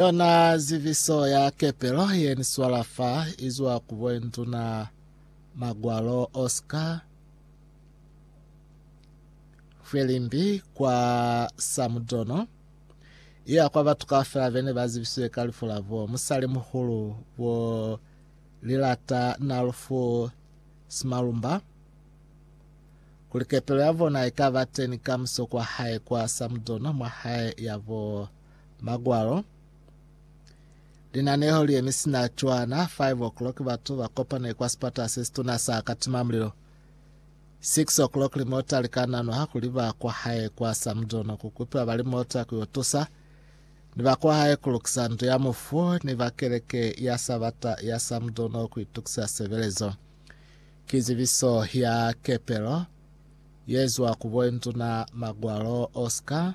Yona ziviso ya kepelo ye ni swala fa i zwa ku Boinduna Magwalo Oscar Mfwelimbi kwa Samudono, i ya kwa batu kaufela be ne ba zibisiwe ka lifu la bo musalimuhulu bo Lilata Nalufu Simalumba, kuli kepelo ya bona i ka ba teni kamuso kwa hae kwa Samudono mwa hae ya bo Magwalo. Linaneho li yemi sina cwana 5 o'clock batu ba kopane kwa sipata se situna sa Katimamulilo. 6 o'clock limota likananwa kuli ba kwa hae kwa Samdono kukupila ba limota ku yo tusa ni ba kwa hae kulukisa ndu ya mufu ni ba keleke ya Sabata ya Samdono ku itukisa sebelezo. Kizibiso ya kepelo yezwa ku boinduna Magwalo Oscar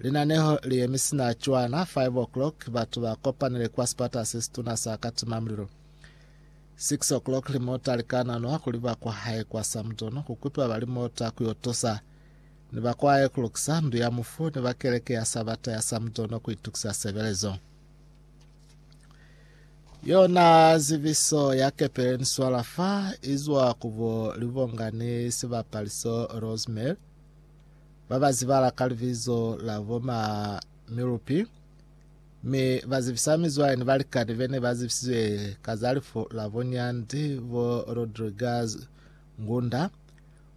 Linaneho li yemi sina cwana 5 o'clock batu ba kopanile kwa sipata se situna sa Katima Mulilo. 6 o'clock limota likananwa kuli ba kwa hae kwa Samdono kukupiwa ba limota ku yotosa ni ba kwa hae kulukisa ndu ya mufu ni ba keleke ya Sabata ya Samdono kuitukisa sebelezo. Yona zibiso ya Catherine Swalafa izwa kubo libongani sibapaliso Rosemary babazibala ka libizo la boma Milupi mi bazibisa mizwale ni balikani bene bazibisizwe ka za lifu la bonyandi bo Rodriguez Ngunda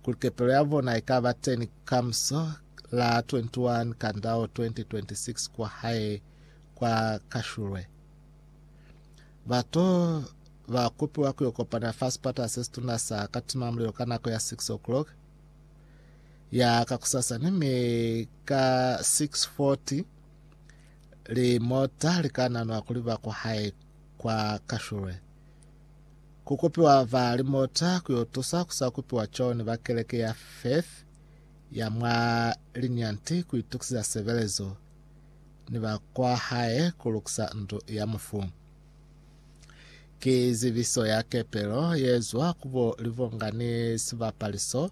kuli kepelo ya bona ikaba teni kamuso la 21 Kandao 2026 kwa hae kwa kashulwe. Bato ba kopiwa ku yo kopana fa sipata se situna sa Katimamulilo ka nako ya 6 o'clock ya ka kusasa, ni mi ka 6:40 limota li ka nanwa kuli ba kuhae kwa kashulwe. Ku kopiwa ba limota ku yo tusa ku sa kupiwa coni ba keleke ya Faith ya mwa Linyanti ku itukiziza sebelezo. ni ba kwa hae ku lukisa ndu ya mufu. Ki zibiso ya kepelo ye zwa ku bo Livonga ni sibapali so,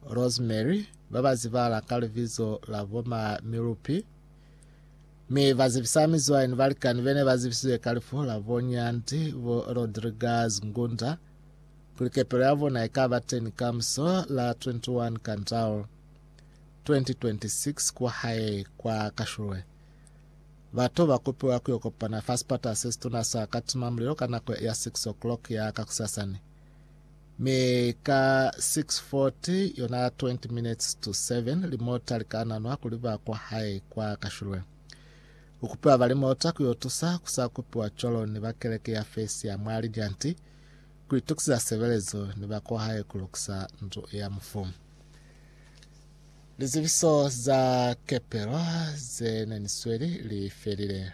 Rosemary, ba ba zibala ka libizo la bo ma Milupi, mi ba zibisa mizwale ni balikani be ne ba zibisize ka lifu la bo Nyanti, bo Rodriguez Ngunda, kuli kepelo ya bona i ka ba teni kamuso la 21 Kandao. 2026 kwa hae kwa Kashulwe. Bato ba kopiwa ku yo kopana fa sipata se situna sa Katima Mulilo ka nako ya 6 o'clock ya kakusasani. Mi ka 6:40 yona 20 minutes to 7 limota li ka nanwa kuli ba kwa hae kwa Kashulwe. Ku kupiwa ba limota ku yo tusa ku sa kupiwa cwalo ni ba keleke ya Fesi ya mwa Lijanti Ku itukiza sebelezo ni ba kwahae ku lukisa ndu ya mufu. Lizebiso za kepelo ze ne ni sweli li felile.